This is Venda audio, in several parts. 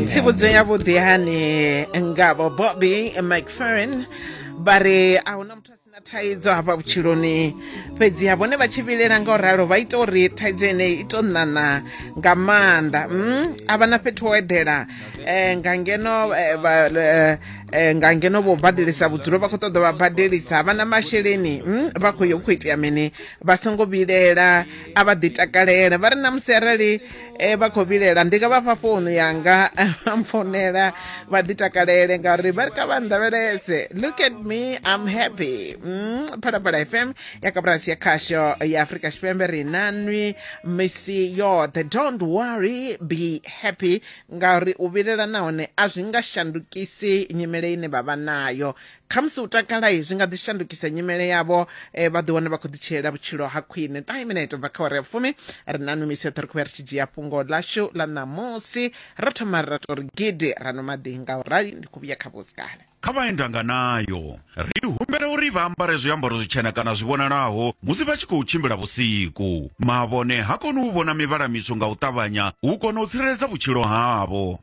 tsivhudzo yavhuḓi hani ngavho bobby mcferrin vha ri a huna muthu a sina thaidzo hafha vhutshiloni fhedzi ha vhone vha tshi vhilela nga u ralo vha ita uri thaidzo ine i to ṋaṋa nga maanḓa mm, a vha na fhethu ho eḓela um nga ngeno eh, eh, eh, nga ngeno vho badelisa vhudzulo vha khou ṱoḓa vha badelisa vha na masheleni mm, vha khou yo u khou itea mini vha songo vhilela a vha ḓi takalela vha ri na musi arali e vha khou vhilela ndi nga vha fha founu yanga vha mpfonela vha ḓi takalele ngauri vha ri kha vha nndavhelese look at me i'm happy mm, phalaphala fm ya kaburasi ya khasho ya afrika tshipembe ri na nwi misi yoṱhe don't worry be happy ngauri u vhilela nahone a zwi nga shandukisi nyimele ine vha vha nayo khamusi u takala zwi nga ḓi shandukisa nyimele yavho eh, vha ḓi wane vha khou ḓi tshilela vhutshilo ha khwine ṱahe minete bva kha wari ya fumi ri na numisi yoṱhe ri khou ya ri tshi dzhia fhungo ḽashu ḽa ṋamusi ra thoma ra tori gidi ra no maḓi nga u rali ndi khou vhuya kha vhusikale kha vha endanga nayo ri humbela uri vha ambare zwiambaro zwitshena kana zwi vhonalaho musi vha tshi khou tshimbila vhusiku mavhone ha koni u vhona mivhala mitswu nga u ṱavhanya u kona u tsireledza vhutshilo havho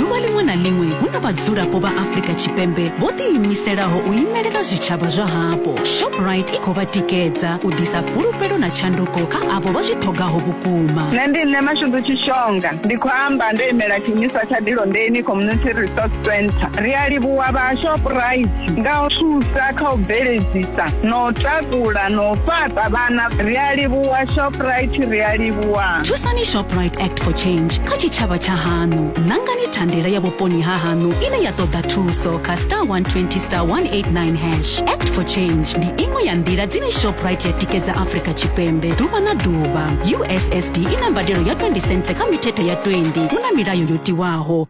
ḓuvha ḽiṅwe na ḽiṅwe hu na vhadzulapo vha afrika tshipembe vho ḓiimiselaho u imelela zwitshavha zwa hapo shoprite i khou vha tikedza u ḓisa fhulufhelo na tshanduko kha avho vha zwi ṱhogaho vhukuma nṋe ndi nṋe mashudu tshishonga ndi khou amba ndo imela tshiimiswa tsha dilondeni community resource center ri a livhuwa vha shoprite nga u thusa kha u bveledzisa na u takula na u fhaṱa vhana ri a livhuwa shoprite ri a livhuwa thusani shoprite act for change kha tshitshavha tsha haṋu nangani thandela ya vhuponi ha haṋu ine ya ṱoḓa thuso kha star 120 star 189 hash act for change ndi iṅwe ya nḓila dzine shoprite ya tikedza afrika tshipembe ḓuvha na ḓuvha ussd i na mbadelo ya 20 cents kha mithethe ya 20 hu na milayo yo tiwaho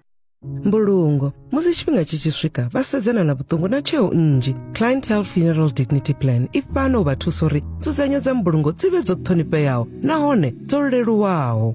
mbulungo musi tshifhinga tshi tshi swika vha sedzana na vhuṱungu na tsheo nnzhi clientele funeral dignity plan i fhano u vha thusa uri nzudzanyo dza mbulungo dzi vhe dzo ṱhonifheaho nahone dzo leluwaho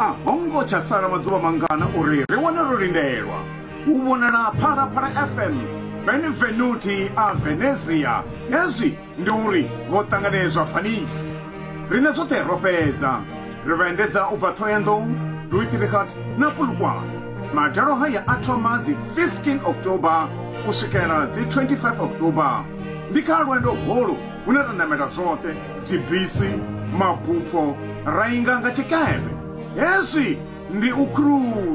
a ho ngo tsha sala maḓuvha mangana uri ri wane ro lindelwa u vhonala phalaphala fm benevenuti a venezia hezwi ndi uri vho ṱanganedzwa fanisi rine zwoṱhe ro fhedza ri vha endedza u bva thohoyandou luitirikhat na pulukwane madalo haya a thoma dzi 15 october u swikela dzi 25 october ndi kha lwendo holu hune ra namela zwoṱhe dzibisi, mabupho ra inga nga tshikepe. Hezwi ndi u khruwa.